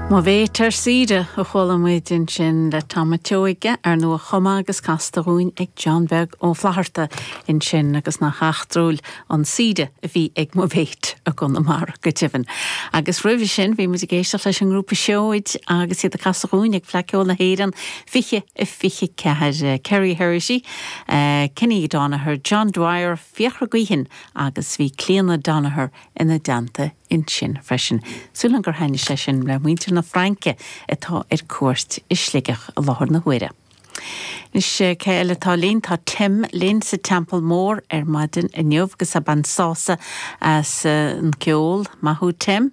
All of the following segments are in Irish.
Mo Mhéit ar Saoire a chuala muid ansin le Tom a' tSeoighe, ar ndóigh a chum é agus casta dhúinn ag John Beag Ó Flatharta ansin agus nach eachtrúil an saoire a bhí ag Mo Mhéit i gConamara go deimhin. Agus roimhe sin bhí muid ag éisteacht leis an ngrúpa Seoid agus iad ag casadh dhúinn ag Fleadh Ceoil na hÉireann 2024, Kerry Herrity, Kenny Donaher, John Dwyer, Fiachra Guihen agus bhí Clíona Donaher ina dteannta ansin freisin. Súil agam gur thaitnigh sé sin le muintir na Fraince atá ar cuairt i Sligeach i láthair na huaire. Anois, cé eile atá linn? Tá Tim linn sa Teampall Mór ar maidin inniu agus ag baint sásamh as an gceol. Maith thú Tim.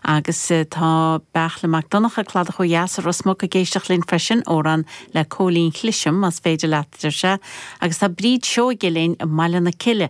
Agus tá Beartla Mac Donncha, Cladach ó Dheas i Ros Muc ag éisteacht linn freisin, amhrán le Cóilín Chliseam más féidir leat, deir sé. Agus tá Bríd Seoige linn i mBaile na Cille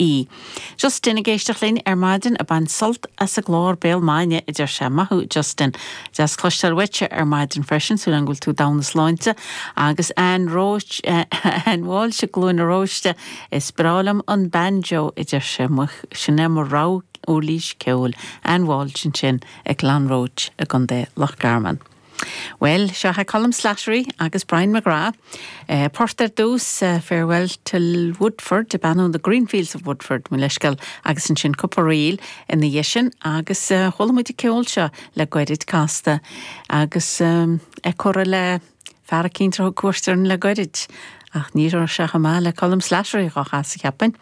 ie. Justin ag éisteacht linn ar maidin ag baint sult as an gclár Béal Maidine a deir sé. Maith thú Justin. Deas cloisteáil uaitse ar maidin freisin, súil agam go bhfuil tú i dtogha na sláinte. Agus Anne Roche, Anne Walsh i gCluain an Róistigh, is breá liom an banjo a deir sé. Muise, sin é mo rogha uirlís ceoil. Anne Walsh ansin i gClonroche i gContae Loch Garman. Bhuel, seo chugaibh Colm Slattery agus Brian McGrath. Port ar dtús, Farewell to Woodford, Beannú in the Green Fields of Woodford, mo leithscéal, agus ansin cúpla ríl ina dhiaidh sin agus chuala muid an ceol seo le goirid casta agus é curtha le fear eicínt a thug cuairt orainn le goirid. Ach ní raibh sé chomh maith le Colm Slattery dhá chasadh, cheapfainn.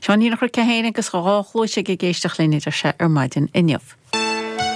Seo an aoir a chuir Cith Éireann agus a dhá chluais ag ag éisteacht linn idir seo ar maidin inniu.